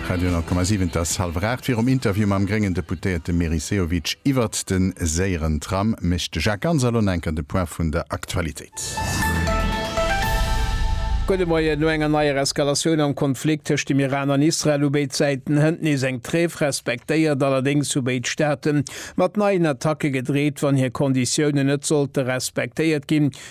Radio 10,7 Et ass hallwer 8. Virum Interview mam gréngen Deputéierte Meris Sehovic iwwert de séieren Tram mécht de Jacques Ganser elo enker de Point vun der Aktualitéit. Gudde Moien. No enger neier Eskalatioun am Konflikt tëscht dem Iran an Israel hu béid Säiten hënt nees eng Tréif respektéiert. Allerdéngs hu béid Staate mat neien Attacke gedreet, wann hir Konditiounen net sollte respektéiert ginn.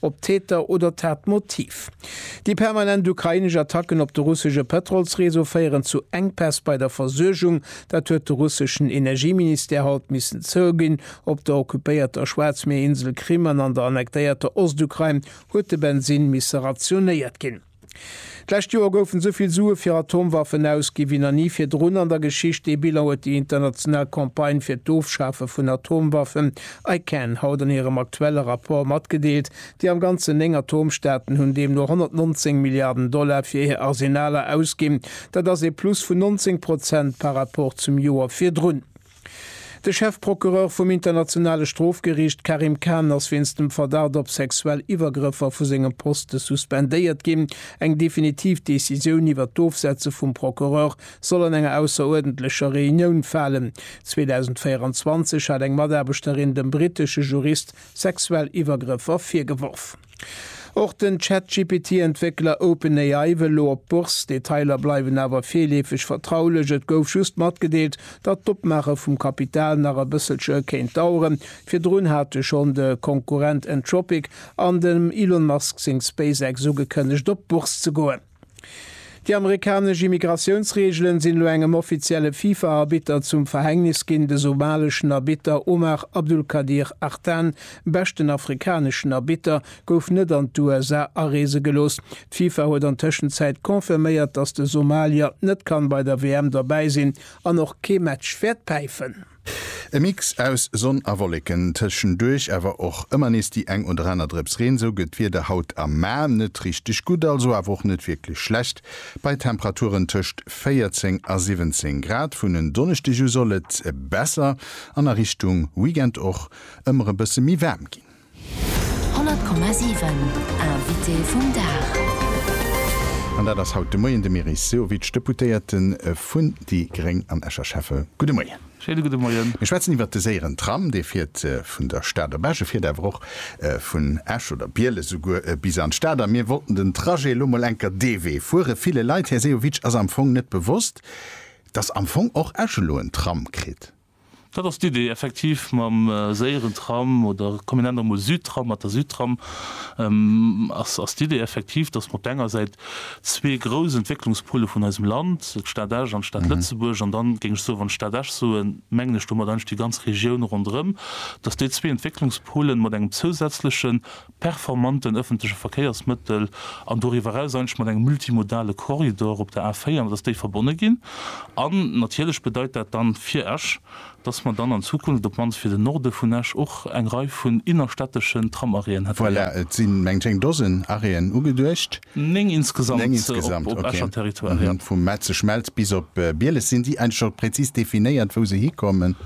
op d'Täter oder d'Tatmotiv. Déi permanent ukrainesch Attacken op de russesche Pëtrolsreseau féieren zu Enkpäss bei der Versuergung. Dat huet de russeschen Energieministère haut missen zouginn. Op der occupéierter Schwaarzmierinsel Krim an an der annektéierter Ostukrain huet de Bensinn misse rationéiert ginn. D'lescht Joer goufen esou vill Sue fir Atomwaffen ausgi wéi nach ni virdrun an der Geschicht. Dee Bilan huet déi international Campagne fir d'Ofschafe vun Atomwaffen, ICAN, haut an hirem aktuelle Rapport matgedeelt. Déi am Ganzen néng Atomstaaten hunn deemno 119 Milliarden Dollar fir hir Arsenaler ausginn. Dat ass ee Plus vun 19 Prozent par Rapport zum Joer virdrun. De Chefprocureur vum Internationale Strofgeriicht Karim Khan ass wéinst dem Verdacht op sexuell Iwwergrëffer vu sengem Poste suspendéiert ginn. Eng definitiv Decisioun iwwer d'Ofsetze vum Procureur soll an enger ausseruerdentlecher Reunioun falen. 2024 hat eng Mataarbechterin dem brittesche Jurist sexuell Iwwergrëffer virgeworf. Och den Chat-GPT-Entwéckler OpenAI wëll elo op d'Bourse. D'Detailer bleiwen awer virleefeg vertraulech. Et gouf just matgedeelt, datt d'Opmaache vum Kapital nach e bësselche kéint daueren. Virdrun hate schonn de Konkurrent Anthropic an dem Elon Musk seng SpaceX ugekënnegt, op d'Bourse ze goen. Déi amerikanesch Immigratiounsreegelen sinn elo engem offizielle FIFA-Arbitter zum Verhängnis ginn. De somaleschen Arbitter Omar Abdulkadir Artan, beschten afrikaneschen Arbitter, gouf net an d'USA areese gelooss. D'FIFA huet an Tëschenzäit confirméiert, datt de Somalier net kann bei der WM derbäi sinn an och kee Match wäert päifen. E Mix aus Sonn a Wolleken, tëschenduerch awer och ëmmer nees déi eng oder aner Drëps Reen. Sou gëtt d'Wieder haut am Maart net richteg gutt, also awer och net wierklech schlecht, bei Temperaturen tëscht 14 a 17 Grad. Vun en Donneschdeg u soll et besser an a Richtung Weekend och ëmmer e bësse méi waarm ginn. 100,7 Invité vum Dag. An dat ass haut de Moien de Meris Sehovic, Deputéierte vun déi gréng an Escher. Schäffe, gudde Moien. Schéine gudde Moien. Mir schwätzen iwwert de séieren Tram. Dee fiert vun der Stad op Esch. E fiert awer och vun Esch oder Bieles esouguer bis an d'Stad. A mir wollten den Trajet elo mol enker dee Wee fueren. Ville Leit, Här Sehovic, ass am Fong net bewosst, dass am Fong och Esch elo en Tram kritt. Dat ass d'Idee effektiv mam séieren Tram oder kombinent och mol Südtram mat der Südtram ass ass d'Idee effektiv, datt mer op der enger Säit zwee grouss Entwécklungspôle vun eisem Land, d'Stad Esch an d'Stad Lëtzebuerg, an dann géing ech soe wann ech Stad Esch soen, mengen ech domat eigentlech déi ganz Regioun ronderëm, datt déi zwee Entwécklungspôlen mat engem zousätzleche performanten ëffentleche Verkéiersmëttel an doriwwer eraus eigentlech mat engem multimodale Korridor op der A4, dass déi verbonne ginn. An natierlech bedeit dat dann fir Esch, dass mer dann an Zukunft, op d'mannst fir den Norde vun Esch, och eng Rei vun innerstädteschen Tram-Arrêten hätten. Voilà, et si mengt ech eng Dosen Arrêten ugeduecht. Néng insgesamt op Escher Territoire, jo. Vu Metzeg-Mels bis op Bieles, sinn déi eigentlech och präzis definéiert, wou se hikommen?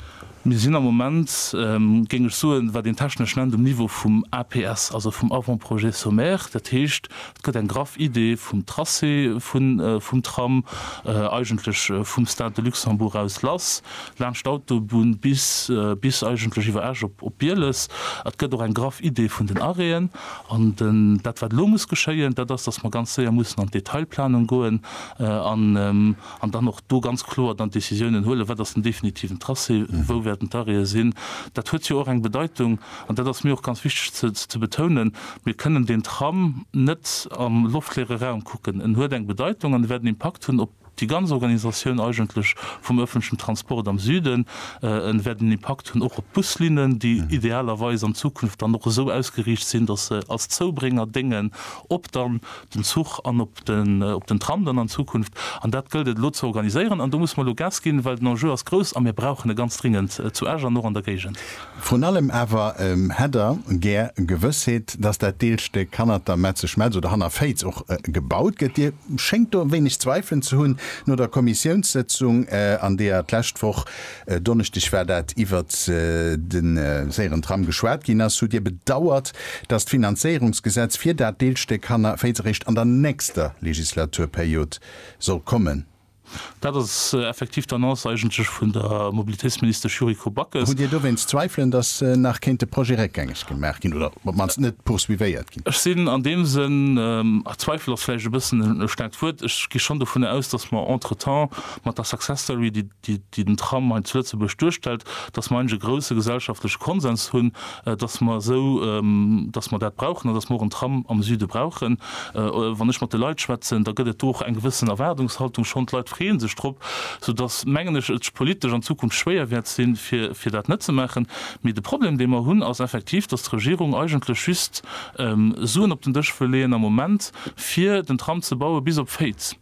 Mir sinn am Moment, géing ech soen, wat een technesch nennt, um Niveau vum APS, also vum Avant-projet sommaire. Dat heescht, et gëtt eng graff Iddi vum Tracé vum Tram, eigentlech vum Stade de Luxembourg aus lass, laanscht d'Autobunn bis eigentlech iwwer Esch op Bieles. Et gëtt och eng graff Iddi vun den Arrêten. An dat, wat elo muss geschéien, dat ass, dass mer ganz séier mussen an d'Detailplanung goen an, An dann och do ganz kloer dann Décisiounen huelen, wat ass den definitiven Tracé, wou wäerten d'Arrêten sinn. Dat huet jo och eng Bedeitung, an dat ass mir och ganz wichteg ze betounen, Mir kënnen deen Tram net am loftleere Raum kucken. En huet eng Bedeitung an e wäert en Impakt hunn op déi ganz Organisatioun eigentlech vum öffentlechen Transport am Süden. En wäert en Impakt hunn och op d'Buslinnen, déi idealerweis an Zukunft dann och esou ausgeriicht sinn, datt se als Zoubrénger déngen, ob dann den Zuch an op den op den Tram dann an Zukunft. An dat gëllt et elo ze organiséieren. An do musse mer elo Gas ginn, well den Enjeu ass grouss a mir brauchen e ganz dringend zu Esch an och an der Géigend. Vrun allem awer hätt der gär Gewëssheet, dass dat Deelstéck hannert der Metze Schmelz oder hanner Féiz och gebaut gëtt. Dir schéngt do e wéineg Zweifelen ze hunn no der Kommissiounssëtzung, an deeër d'lescht Woch E Donneschdeg war dat, iwwert de séieren Tram geschwat ginn ass, hutt Dir bedauert, datt d'Finanzéierungsgesetz fir dat Deelstéck Hanner Féiz eréischt an der nächster Legislaturperiod soll kommen. Dat ass effektiv d'Annonce eigentlech vun der Mobilitéitsministesch Yuriko Backes. Hutt Dir dowéinst Zweifelen, datt nach kéint de Projet réckgängeg gemaach ginn oder op d'mannst net poursuivéiert ginn? Ech sinn an deem Sënn, Zweifel ass vläicht e bëssen e staarkt Wuert, ech gi schonn dovunner aus, datt mer entretemps mat der Success Story, déi déi den Tram hei zu Lëtzebuerg duerstellt, datt mer eigentlech e grouse gesellschaftleche Konsens hunn, datt mer esou, datt mer dat brauchen an datt mer och en Tram am Süde brauchen. Wann ech mat de Leit schwätzen, da gëtt et do och eng gewëssen Erwaardungshaltung schonn. D'Leit freeë sech drop, soudatt, mengen ech, et politesch an Zukunft schwéier wäert sinn, fir dat net ze maachen. Mee de Problem, dee mer hunn, ass effektiv, datt d'Regierung eigentlech just Suen op den Dësch wëll leeën am Moment, fir den Tram ze baue bis op Féiz.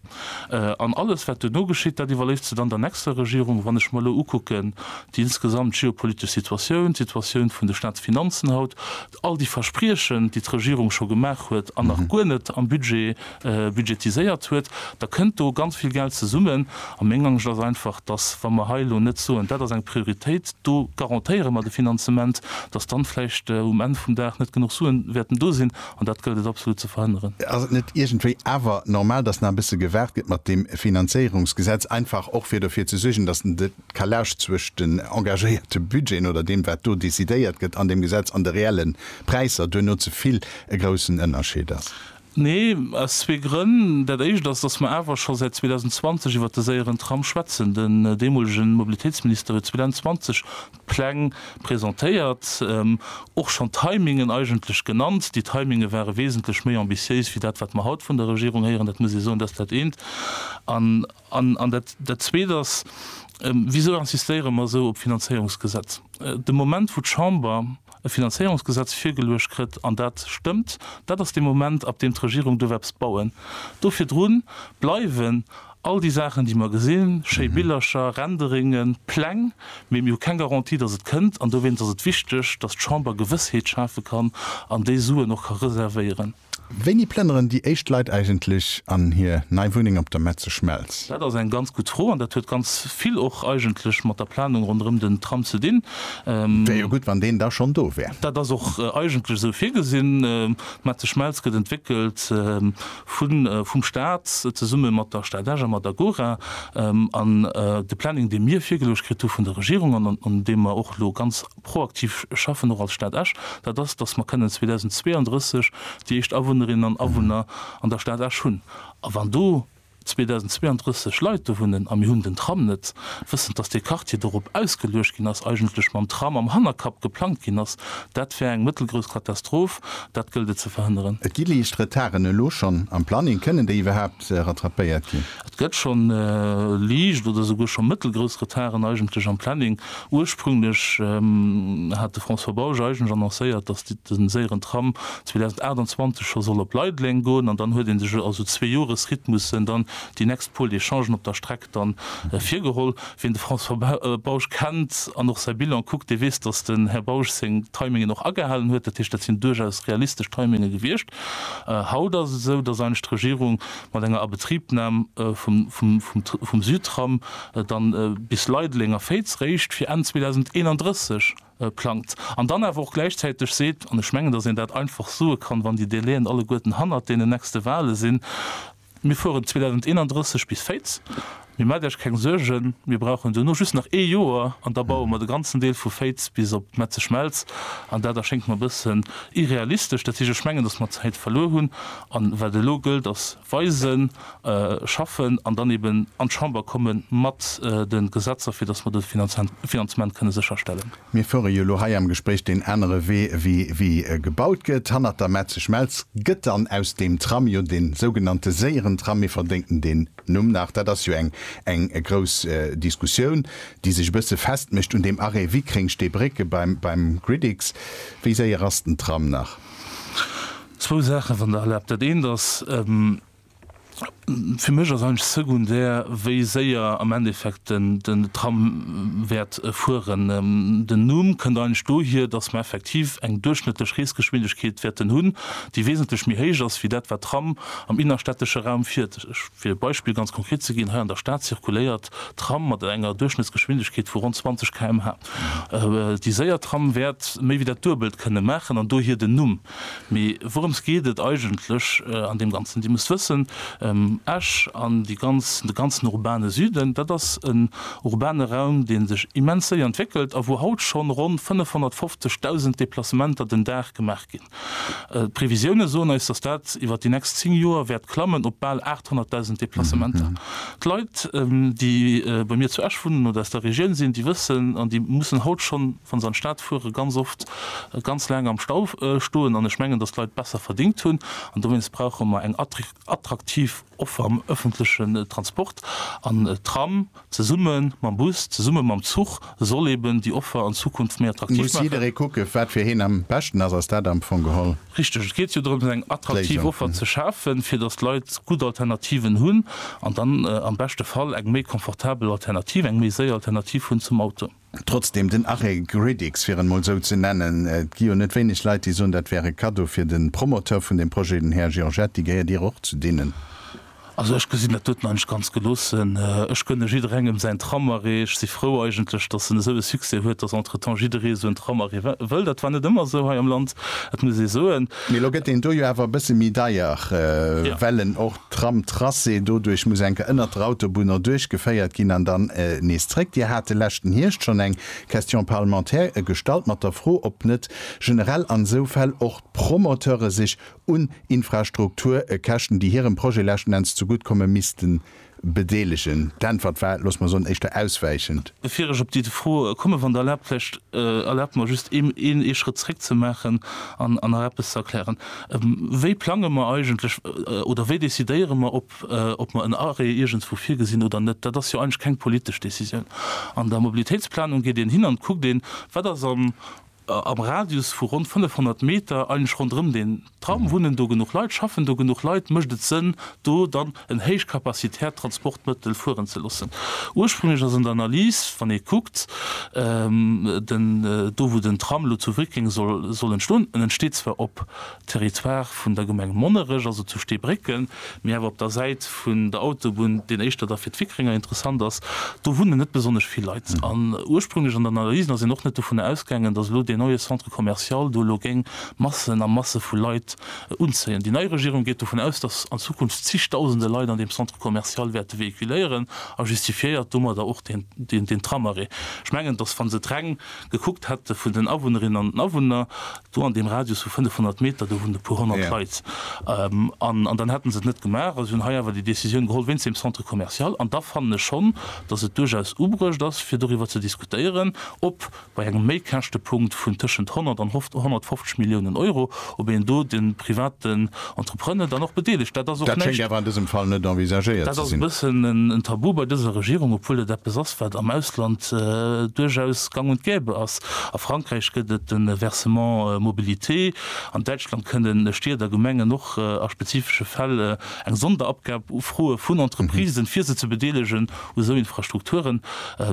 An alles, wat duerno geschitt, dat iwwerléisst se dann der nächster Regierung. Wann ech mer elo ukucken, déi insgesamt geopolitesch Situatioun, d'Situatioun vun de Staatsfinanzen haut, all déi Verspriechen, déi d'Regierung scho gemaach huet an nach guer net am Budget budgetiséiert huet, da kënnt do ganz vill Geld zesummen. A meng Angscht ass einfach, dass, wa mer hei elo net soen, dat ass eng Prioritéit, do garantéiere mer de Finanzement, dass dann vläicht um Enn vum Dag net genuch Suen wäerten do sinn, An dat gëllt et absolut ze verhënneren. Ass et net iergendwéi awer normal, dass nach e bësse gewaart gëtt mat deem Finanzéierungsgesetz, einfach och fir derfir ze suergen, dass en de Calage zwëscht den engagéierte Budgeten oder deem, wat do decidéiert gëtt an deem Gesetz, an de reelle Präisser duerno ze vill e groussen Ënnerscheed ass? Nee, aus zwee Grënn. Dat éischt ass, dass mer awer scho säit 2020 iwwert de séieren Tram schwätzen. Den deemolege Mobilitéitsminister huet 2020 Pläng presentéiert, och schonn d'Timingen eigentlech genannt. Déi Timinge ware wesentlech méi ambitiéis wéi dat, wat mer haut vun der Regierung héieren. Dat muss ee soen. Dat ass dat eent. An dat Zweet ass, Wisou insistéiere mer esou op d'Finanzéierungsgesetz? De Moment, wou d'Chamber e Finanzéierungsgesetz virgeluecht krëtt, an dat stëmmt, dat ass dee Moment, ab deem d'Regierung duerf eppes bauen. Do virdru bleiwen all déi Saachen, déi mer gesinn, schéi Billercher, Renderingen, Pläng, mee mir hu keng Garantie, datt et kënnt. An dowéinst ass et wichteg, datt d'Chamber Gewëssheet schafe kann an déi Suen och ka reservéieren. Wéini plënneren déi éischt Leit eigentlech an hir nei Wunneng op der Metze Schmelz? Dat ass eng ganz gutt Fro an dat huet ganz vill och eigentlech mat der Planung ronderëm den Tram ze dinn. Wär jo gutt, wann deen da schonn do wär. Dat ass och eigentlech esou virgesinn. D'Metze Schmelz gëtt entwéckelt vum Staat zesumme mat der Stad Esch a mat Agora. An de Planning, dee mir virgeluecht kritt hu vun der Regierung an un deem mer och elo ganz, proaktiv schaffen, och als Stad Esch, dat ass, dass mer kënnen 2032 déi éischt Awunnerinnen an Awunner an der Stad Esch hunn. A wann do 2032 Leit do wunnen a mir hunn den Tram net, wëssend, dass dee Quartier dorop ausgeluecht ginn ass, eigentlech mam Tram am Hannerkapp geplangt ginn ass, dat wär eng mëttelgrouss Katastroph. Dat gëllt et ze verhënneren. Et gi liicht Retarden elo schonn am Planning. Kënnen déi iwwerhaapt se rattrapéiert ginn. Et gëtt scho liicht oder souguer scho mëttelgrouss Retarden eigentlech am Planning. Ursprünglech hat de François Bausch eigentlech annoncéiert, datt de séieren Tram 2028 scho soll op Leideleng goen an dann huet ee sech a sou Zweejoresrhythmussen dann déi nächst puer Echangen op der Streck dann virgeholl. Wien de François Bausch kennt an och säi Bilan kuckt, dee weess, datt den Här Bausch seng Timingen och agehalen huet. Dat heescht, dat sinn duerchaus realistesch Timinge gewiescht. Haut ass et esou, dass eischt d'Regierung mat enger Abetribnam vum Südtram dann bis Leideleng a Féiz réischt fir Enn 2031 plangt an dann awer och gläichzäiteg seet, an ech mengen, dass een dat einfach soe kann, wann déi Délaiën alleguerten hannert deenen nächste Wahle sinn, Mir fueren 2031 bis Féitz, mee maacht Iech keng Suergen, mir brauchen duerno just nach ee Joer an da baue mer de ganzen Deel vu Féitz bis op d'Metze Schmelz an. Dat erschéngt mer e bëssen irrealistesch. Dat heescht, ech mengen, datt mer Zäit verluer hunn an wat elo gëllt ass weisen, schaffen an dann eben an d'Chamber komme mat de Gesetzer, fir datt mer de Finanzement kënne sécherstellen. Mir fuere jo elo hei am Gespréich deen anere Wee wéi wéi e gebaut gëtt, hannert der Mätzeschmelz. Gëtt dann aus deem Tram jo de sougenannte séieren Tram? Mir verdénken deen Numm nach. Dat ass jo eng eng grouss Diskussioun, déi sech e bësse festmécht un deem Arrêt Wickreng-Steebrécke beim beim Gridix. Wéi séier ass den Tram nach? Zwou Saachen, wann Der erlaabt. Dat eent ass, Fir mech ass eigentlech secondaire, wéi séier am Endeffekt den Tram wäert fueren. Den Numm kënnt eigentlech dohier, dass mer effektiv eng duerchschnëttlech Reesgeschwindegkeet wäerten hunn, déi wesentlech méi héich ass wéi dat, wat d'Tram am innerstädtesche Raum fiert. Fir e Beispill ganz konkret ze ginn, Hei an der Stad zirkuléiert d'Tram mat enger Duerchschnëttsgeschwindegkeet vu ronn 20 km/h. Déi séier Tram wäert méi wéi dat Duebelt kënne maachen an dohier den Numm. Mee wourëms geet et eigentlech an deem Ganzen? Dir musst wëssen, Esch an de ganzen urbane Süden, dat ass en urbane Raum, dee sech immens séier entwéckelt a wou haut schonn ronn 550.000 Deplacementer den Dag gemaach ginn. D'Previsioune soen eis, dass dat iwwer déi nächst zéng Joer wäert klammen op bal 800.000 Deplacementer. D'Leit, déi bei mir zu Esch wunnen oder aus der Regioun sinn, déi wëssen an déi mussen haut schonn, Wann se an d'Stad fueren, ganz oft ganz laang am Stau stoen an ech mengen, dass d'Leit besser verdingt hunn an dowéinst brauche mer eng attraktiv Offer am öffentlechen Transport an Tram zesumme mam Bus, zesumme mam Zuch soll eben déi Offer an Zukunft méi attraktiv maachen. Muss jidderee kucken, wat fir hien am beschten ass, ass dat am Fong geholl. Richteg, et geet jo drëms eng attraktiv Offer ze schafen, fir dass d'Leit gutt Alternativen hunn an dann am beschte Fall eng méi komfortabel Alternativ, eng méi séier Alternativ hunn zum Auto. Trotzdem, den Arrêt Gridix, fir en emol esou ze nennen, et gi jo net wéineg Leit, déi soen, dat wär e Cadeau fir de Promoteur vun deem Projet, den Här Giorgetti. Gehéiert Dir och zu deenen? Also ech gesinn dat doten nach net ganz geloossen. Ech gönne jidderengem säin Tramarrêt. Ech si frou eigentlech, dass en esou e Succès huet, dass entretemps jidderee esou en Tramarrêt wëll. Dat war net ëmmer esou hei am Land, dat muss ee soen. Mee elo gëtt deen do jo awer e bësse méi deier, well en och Tramtracé doduerch muss enker ënnert der Autobunn erduerch geféiert ginn an dann nees zréck. Dir hat de leschten Hierscht schonn eng Question parlementaire gestallt mat der Fro, ob net generell an esou Fäll och d'Promoteure sech un Infrastrukturkäschten, déi hirem Projet leschten Enns zegutt komme misste bedeelegen. D'Äntwert war, loosse mer soen, éischter auswäichend. Bevir ech op déi Fro kommen, wann Der erlaabt, vläicht erlaabt mer just een Schrëtt zréckzemaachen an nach eppes ze erklären. Wéi plange mer eigentlech oder wéi decidéiere mer, ob mer en Arrêt iergendswou virgesinn oder net? Dat ass jo eigentlech keng politesch Décisioun. An der Mobilitéitsplanung geet een hin an kuckt een, wat ass am Radius vu ronn 500 Meter eigentlech ronderëm deen Tram, wunnen do genuch Leit, schaffen do genuch Leit, mécht et Sënn, do dann en héichkapazitärt Transportmëttel fueren ze loossen. Ursprünglech ass an der Analys, wann ee kuckt, den, do wou den Tram elo zu Wrickeng soll, soll entstoen, en entsteet zwar op Territoire vun der Gemeng Monnerech, also zu Steebrécken, mee awer op der Säit vun der Autobunn, déi éischter da fir d'Wickrenger interessant ass. Do wunnen net besonnesch vill Leit. An ursprünglech an den Analysen ass een och net dovunner ausgaangen, dass elo deen neie Centre commercial do elo géing Massen a Masse vu Leit Unzéien. Déi nei Regierung geet dovun aus, datt an Zukunft zigdausende Leit an deem Centre commercial wäerte véhiculéieren a justifiéiert domadder och deen Tramarrêt. Ech mengen, datt wa se et reng gekuckt hätte vun den Awunnerinnen an den Awunner, do an deem Radius vu 500 Meter, do wunnen e puer honnert Leit, an dann hätte se et net gemaach. A si hunn hei awer déi Décisioun geholl wéinst deem Centre commercial. An da fannen ech schonn, datt et duerchaus ubruecht ass, fir doriwwer ze diskutéieren, ob Bei engem Méikäschtepunkt vun tëschent 100 an 150 Milliounen Euro, ob een do de privaten Entrepreneur dann och bedeelegt, dat ass och näischt. Dat schéngt awer an dësem Fall net envisagéiert ze sinn. Dat ass e bëssen en Tabu bei dëser Regierung, obwuel et eppes ass, wat am Ausland duerchaus gang und gäbe ass. A Frankräich gëtt et de Versement mobilité. An Däitschland kënne Stied a Gemengen och a spezifesche Fäll eng Sonderabgab ufroe vun Entreprisen, fir se ze bedeelegen. u sou Infrastrukturen.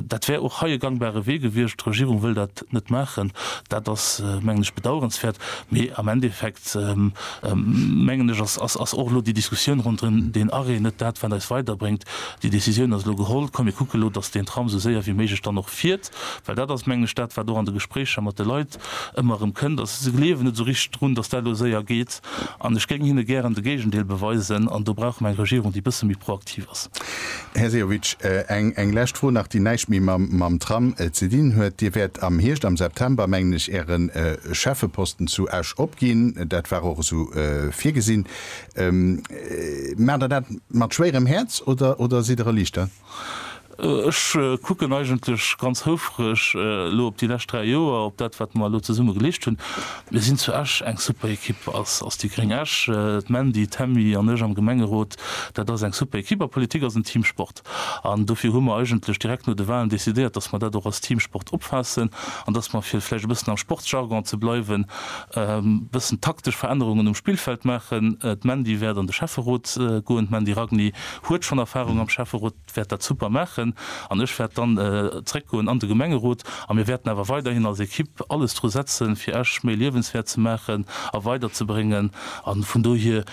Dat wär och hei e gangbare Wee gewiescht. D'Regierung wëll dat net maachen. Dat ass, mengen ech, bedauerenswäert. Mee am Endeffekt, mengen ech, ass och elo déi Diskussioun ronderëm deen Arrêt net dat, wat eis weiderbréngt. Déi Decisioun ass elo geholl. Komm, mir kucke elo, datt deen Tram sou séier wéi méiglech dann och fiert. Well dat ass, mengen ech, dat, wat och an de Gespréicher mat de Leit ëmmer erëm kënnt, ass, se gleewen net esou richteg drun, datt dat elo séier geet. An ech géing hinne gären de Géigendeel beweisen. An do brauche mer eng Regierung, déi e bësse méi proaktiv ass. positiv ass. Här Sehovic, eng lescht Fro nach, déi näischt méi mam Tram ze dinn huet. Dir wäert am Hierscht, am September, mengen ech, Äre Schäffeposten zu Esch opginn. Dat war och esou virgesinn. Maacht Der dat mat schwéierem Häerz oder sidd Der erliichtert? Ech kucken eigentlech ganz houfreg elo op déi lescht 3 Joer, op dat wat mer elo zesumme geleescht hunn. Mir sinn zu Esch eng super Ekipp als als déi gréng Esch, d'Mandy, d'Hemmi an ech am Gemengerot, dat ass eng super Ekipp a Politik ass en Teamsport. An dofir hu mer eigentlech direkt no de Wahlen decidéiert, datt mer dat och als Teamsport opfaassen an datt mer, fir vläicht e bëssen am Sportsjargon ze bleiwen, e bëssen taktesch Verännerungen um Spillfeld maachen. D'Mandy wäert an de Schäfferot goen. D'Mandy Ragni huet schonn Erfahrung am Schäfferot. wäert dat super maachen an ech wäert dann zréckgoen an de Gemengerot a mir wäerten awer weiderhin als Ekipp alles dru setzen, fir Esch méi liewenswäert ze maachen a weiderzebréngen a vun dohier,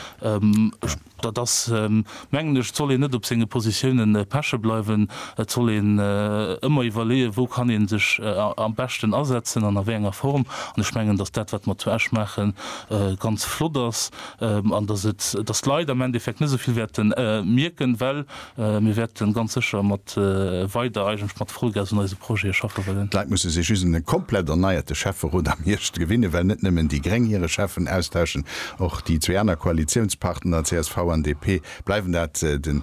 dat ass, mengen ech, et soll een net op senge Positiounen peche bleiwen, et soll een ëmmer iwwerleeën, wou kann ee sech am beschten asetzen an a wéi enger Form an ech mengen, datt dat, wat mer zu Esch maachen, ganz flott ass an datt d'Leit am Endeffekt net esou vill wäerte mierken, well. Mir wäerte ganz sécher mat weider, eigentlech mat Vollgas un eise Projete schaffe wëllen. D'Leit musse sech just un e komplett erneierte Schäfferot am Hierscht gewinne well net nëmmen déi Gréng hire Schäffen austauschen, och déi zwee aner Koalitiounspartner csv an DP bleiwen dat. De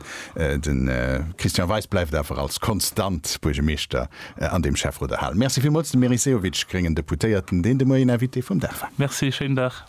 Christian Weis bleift awer als konstant Buergemeeschter an deem Schäfferot erhalen. Merci villmools dem Meris Sehovic, gréngen Deputéierten, deen de Moien Invité vum Dag war. Merci, schéinen Dag.